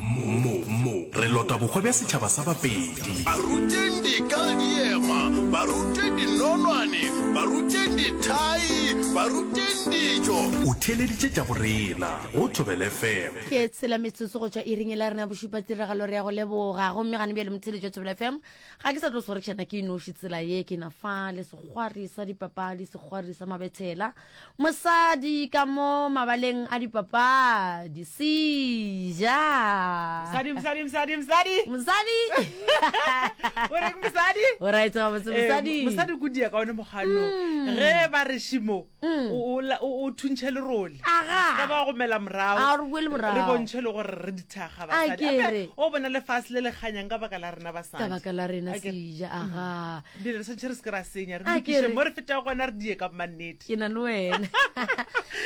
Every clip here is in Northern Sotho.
Mo, mo, re lota bohwa bja setšhaba sa Bapedi. Baruteng dika le diema, baruteng dinonwane, baruteng dithai, baruteng dijo. O theeleditše tša go rena go Thobela FM. Ke tshela metsotso go tšwa iring e la rena ya bošupa tiragalo re ya go leboga gomme gane bjale motheeletši wa thobela fm ga ke sa tlo swarešana ke noši tsela ye ke na fa le sekgwari sa dipapadi sekgwari sa mabethela Mosadi ka mo mabaleng a dipapadi. Sija. Mosadi, mosadi, mosadi, mosadi. Mosadi. O reng mosadi? O right ga botse Eh, mosadi. mosadi ko dia ka one mogano ge ba re šimo Mm. o- o la- o o thuntšhe lerole Aga. ka ba gomela morago A re boele morago. re bontšhe le gore re dithaga A basadi ke Gape re. o bona lefase le le kganyang ka baka la rena basadi Ka baka la rena A ke re, sija. Aga. Dilo re swantšhe re se ke ra senya re A ke lokiše re- mo re fetago gona re die ka bomannete ke na le wena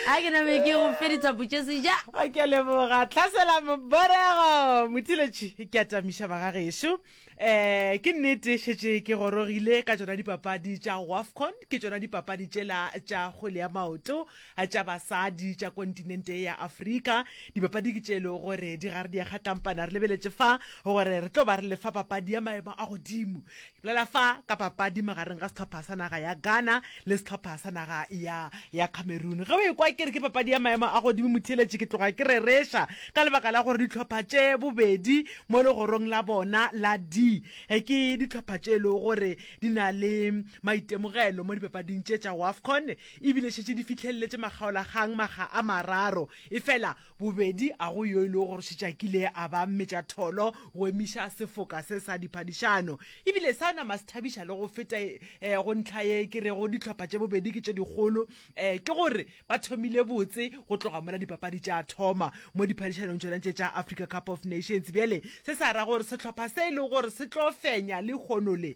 a ke name ke go feditsa botšeseja a ke a leboga tlhasela moborego mothiletši ke atamiša bagagešo um ke nnete šetše ke gorogile ka tšona dipapadi tša wafcon ke tšona dipapadi tšela tša kgwele ya maoto A Tša basadi tša kontinente ye ya Afrika, dibapadi ke tše e lego gore di gare di a kgakampana. Re lebeletše fa gore re tlo ba re le fa papadi ya maemo a godimo. Ke bolela fa ka papadi magareng ga sehlopha sa naga ya Ghana le sehlopha sa naga ya ya Cameroon. Ge o e kwa ke re ke papadi ya maemo a godimo, motheeletši, ke tloga ke rereša ka lebaka la gore dihlopha tše bobedi mo legorong la bona la D ke dihlopha tše e lego gore di na le maitemogelo mo dipapading tše tša Wafcon. E bile šetše di fihlelletše makgaolakgang makga a mararo, efela bobedi a go yo e lego gore šetše a kile a ba mmetšatholo go emiša sefoka se sa diphadišano. E bile sa nama se thabiša le go feta e, go ntlha ye ke rego dihlopha tše bobedi ke tše dikgolo, e, ke gore ba thomile botse go tloga mola dipapadi tša thoma mo diphadišanong tšona tše tša Africa Cup of Nations. Bjale se sa ra gore sehlopha se e lego gore se tlo fenya lehono le,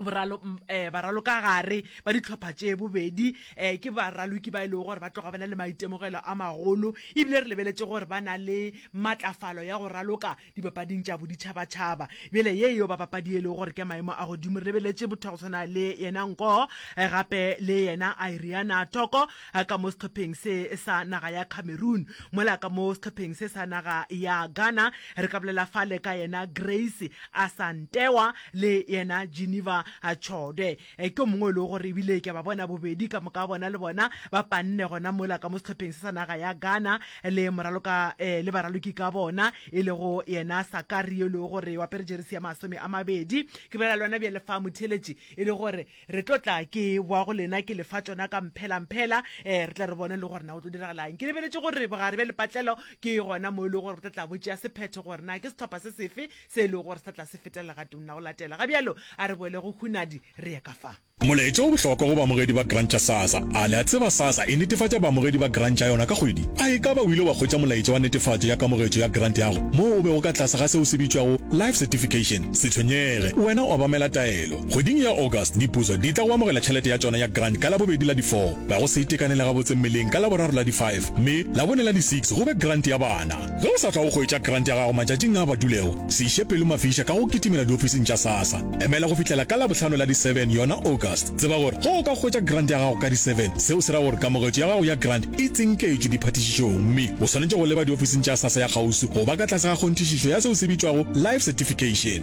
boralo um baralo ka gare ba ditlhopha tše bobedi um ke baraloki ba e lego gore ba tloga ba na le maitemogelo a magolo ebile re lebeletše gore ba na le matlafalo ya go raloka dipapading tša boditšhabatšhaba bjele ye yo bapapadi e lego gore ke maemo a godimo re lebeletše botho go tshwana le yena nko gape le yena iriana toko a ka mo sehlopheng se sa naga ya Cameroon, mola ka mo sehlopheng se sa naga ya Ghana. Re ka bolela fale ka yena Grace Asantewa le yena Geneva Chode. Ke o mongwe o lego gore ebile ke a ba bona bobedi ka moka bona le bona ba panne gona mola ka mo sehlopheng se sa naga ya Ghana le moraloka le baraloki ka bona e lego yena Sakari yo e lego gore o apere jeresi ya masome a mabedi. Ke bolela le wena bjale fa motheeletši e le gore Re tlo tla ke boa go lena ke lefa tšona ka mphela-mphela, ee, re tle re bone le gore na go tlo diragala eng. Ke lebeletše gore bogare bja lepatlelo ke gona moo e lego gore bo tla tla bo tšea sephetho gore na ke sehlopha se sefe se e lego gore se tla tla se feta legatong la go latela. Ga bjalo, a re boele go hunadi re ye ka fa. Molaetša o bohlokwa go baamogedi ba Grant tša SASSA. A le a tseba SASSA e netefatša baamogedi ba Grant tša yona ka kgwedi? A e ka ba o ile wa hwetša molaetša wa netefatšo ya kamogetšo ya Grant yago moo o bego ka tlase ga seo se bitšwago Life Certification? Se tshwenyege, wena o obamela taelo. Kgweding ya August, dipuso di tla go amogela tšhelete ya tšona ya grant ka Labobedi la di 4, ga go se itekanele gabotse mmeleng ka Laboraro la di 5, mme Labone la di 6 go be grant ya bana. Ge o sa tla go hwetša grant ya gago matšatšing a a badulego, se iše pelo mafiša ka go kitimela diofising tša SASSA. Emela go fihlela ka Labohlano la di 7, yona August. Tseba gore ge o ka hwetša grant ya gago ka di 7, seo se ra gore kamogetšo ya gago ya grant e tsinketšwe diphathišišong mme o swanetše go leba diofising tša SASSA ya kgauswi go ba ka tlase ga kgonthišišo ya seo se bitšwago Life Certification.